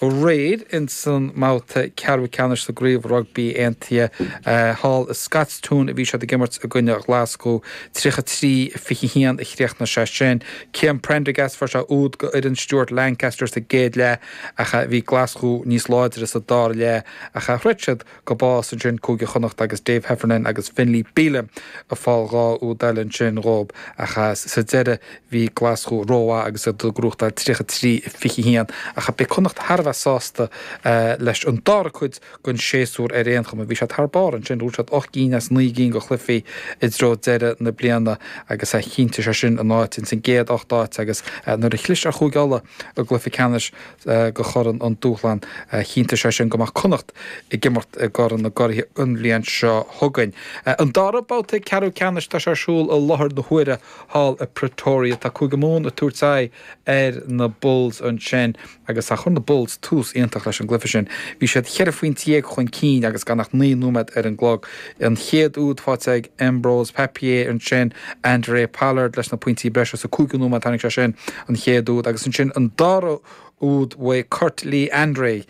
Aréir ins an mbabhta ceathrú ceannais sa gCraobh Rugbaí Aontaithe thall i Scotstoun a bhí siad ag imirt i gcoinne Ghlaschú. 33, 21 a chríochnaigh sé sin. Cian Prendergast, fuair sé úd go fhoireann Stuart Lancaster sa gcéad leath ach bhí Glaschú níos láidre sa dara leath ach throid siad go bás ansin Cúige Chonnacht agus Dave Heffernan agus Finlay Bealham ag fáil dhá úd eile ansin dhób ach sa deireadh bhí Glaschú rómhaith agus iad ag gnóthachtáil 33, 21 ach beidh Connacht thar a bheith sásta leis an dara cuid den séasúr ar aon chuma, bhí siad thar barr ansin, bhuaigh siad ocht gcinn as naoi gcinn go chluichí i dtreo deireadh na bliana agus chinntigh sé sin a n-áit ins an gcéad ocht áit agus nuair a chlis ar Chúige Uladh i gcluiche ceannais go Chorn an Dúshláin, chinntigh sé sin go mbeadh Connacht ag imirt i gCorn na gCuradh an bhliain seo chugainn. An dara babhta ceathrú ceannais tá sé ar siúl i láthair na huaire thall i Pretoria. Tá Cúige Mumhan ag tabhairt aghaidh ar na Bulls ansin agus chuir na Bulls tús iontach leis an gcluiche sin. Bhí siad cheithre phointe dhéag chun cinn agus gan ach naoi nóiméad ar an gclog. An chéad úd faighte ag Embrose Papier, ansin Handré Pollard leis na pointí breise sa cúigiú nóiméad, tháinig sé sin an chéad úd, agus ansin an dara úd bhuaigh Kurt-Lee Arendse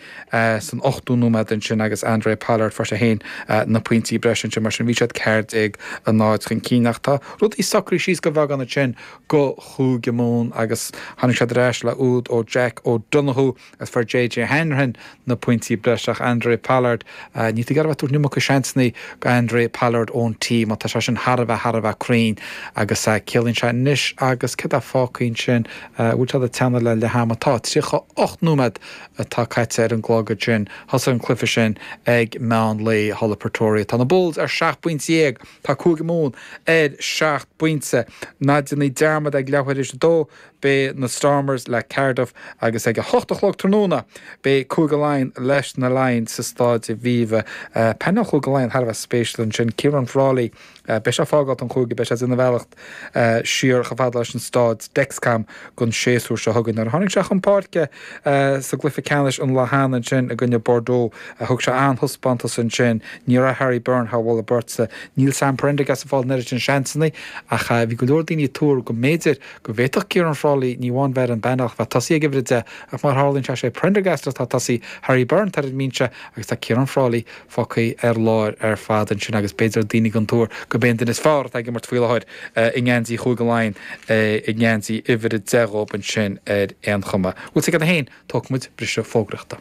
san ochtú nóiméad ansin agus Handré Pollard fuair sé féin na pointí breise ansin, mar sin bhí siad 14-0 chun cinn ach tá rudaí socraithe síos go beagán ansin go Chúige Mumhan agus tháinig siad ar ais le úd ó Jack O'Donoghue, Is fuair JJ Hanrahan na pointí breise ach Handré Pollard, ah, níl tú ag iarraidh a bheith ag tabhairt an iomarca seansannaí go Handré Pollard ón tí mar tá sé sin thar a bheith, thar a bheith cruinn agus ah, ciallaíonn sé anois agus céard a fhágann sin, bhuel tá siad ag teannadh le leath ama, tá tríocha ocht nóiméad atá caite ar an gclog ansin, thosaigh an cluiche sin ag meán lae thall i Pretoria. Tá na Bulls ar seacht bpointe dhéag, tá Cúige Mumhan ar seacht bpointe. Ná déanaí dearmad ag leathuair tar éis a dó, beidh na Stormers le Cardiff agus ag a hocht a chlog tráthnóna beidh Cúige Laighean leis na Lions sa Staid Aviva. Painéal Chúige Laighean thar a bheith spéisiúil ansin, Ciarán Frawley beidh sé ag fágáil an chúige, beidh sé ag déanamh a bhealach siar chomh fada leis an Staid Dexcom, don séasúr seo chugainn. Nuair a tháinig sé chun páirce sa gcluiche ceannais an lá cheana ansin i gcoinne Bordeaux thug sé an-taispeántas ansin, ní raibh Harry Byrne thar mholadh beirte. Níl Sam Prendergast ag fáil an oiread sin seansanna ach bhí go leor daoine ag tuar go mb'fhéidir go bhféadfadh Ciarán Frawley ní amháin bheith ar an bpainéal ach bheith ag tosaí ag uimhir 10 ach mar a tharlaíonn sé, sé Prendergast atá ag tosaí, Harry Byrne tá ar an mbinse agus tá Ciarán Frawley fágtha ar lár ar fad ansin agus b'fhéidir daoine den tuairim gurb é an duine is fearr atá ag imirt faoi láthair i ngeansaí Chúige Laighean é i ngeansaí uimhir 10 dhób ansin ar aon chuma. Bhuel, sa gceann 1, tógfaimid briseadh fógraíochta.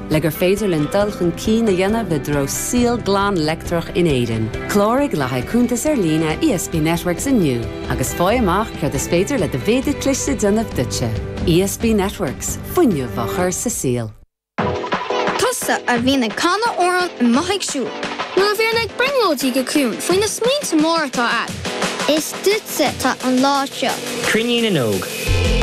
le gur féidir linn dul chun cinn a dhéanamh i dtreo saol glan leictreach in Éirinn. Cláraigh le haghaidh cuntas ar líne ESB Networks inniu agus faigh amach céard is féidir le do mhéadar cliste a dhéanamh duitse. ESB Networks, fuinneamh á chur sa saol. Tusa a bhíonn ag canadh amhráin i mo ag siúl. Nuair a bhíonn ag brionglóidí go ciúin faoi na smaointe móra atá a'd. Is. Duitse atá an lá seo. Cruinniú na nÓg.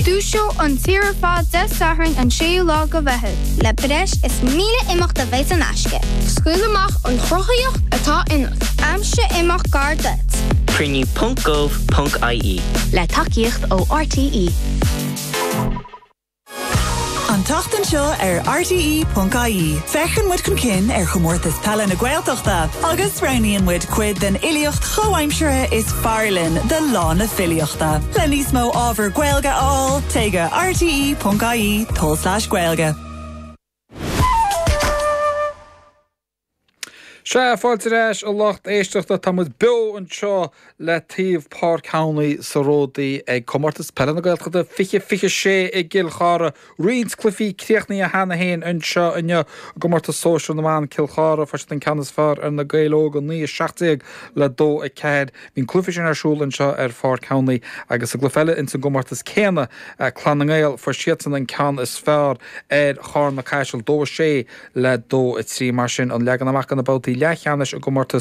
Dúiseoidh an tír ar fad Dé Sathairn an 6ú lá de Mheitheamh. Le breis is 1000 imeacht a bheidh saor in aisce. Scaoil amach an chruthaitheacht atá ionat. Aimsigh imeacht gar duit. Cruinniú ponc gov ponc ie. Le tacaíocht ó RTÉ. An tseachtain seo ar RTÉ.ie, féachann muid chun cinn ar Chomórtas Peile na Gaeltachta agus roghnaíonn muid cuid den fhilíocht chomhaimseartha is fearr linn do Lá na Filíochta. Le níos mó ábhar Gaeilge a fháil, téigh go rte.ie, tulslais gaeilge. Sea, fáilte ar ais a lucht éisteachta, tá muid beo anseo le taobh Páirc Thamhnaí sa Ródaí ag Comórtas Peile na Gaeltachta 2026 i gCill Chartha. Roinnt cluifí críochnaithe cheana féin anseo inniu i gcomórtas sóisear na mban, Cill Chartha fuair siad an ceann is fearr ar Na Gaeil Óga, 9, 17 le 2, 4. Bhí an cluiche sin ar siúl anseo ar Pháirc Thamhnaí agus sa gcluiche eile ins an gcomórtas céanna, Clann na nGael, fuair siadsan an ceann is fearr ar Charna Caiseal, dó a sé le dó a trí. Mar sin, an leagan amach do na babhtaí leathcheannais i gcomórtas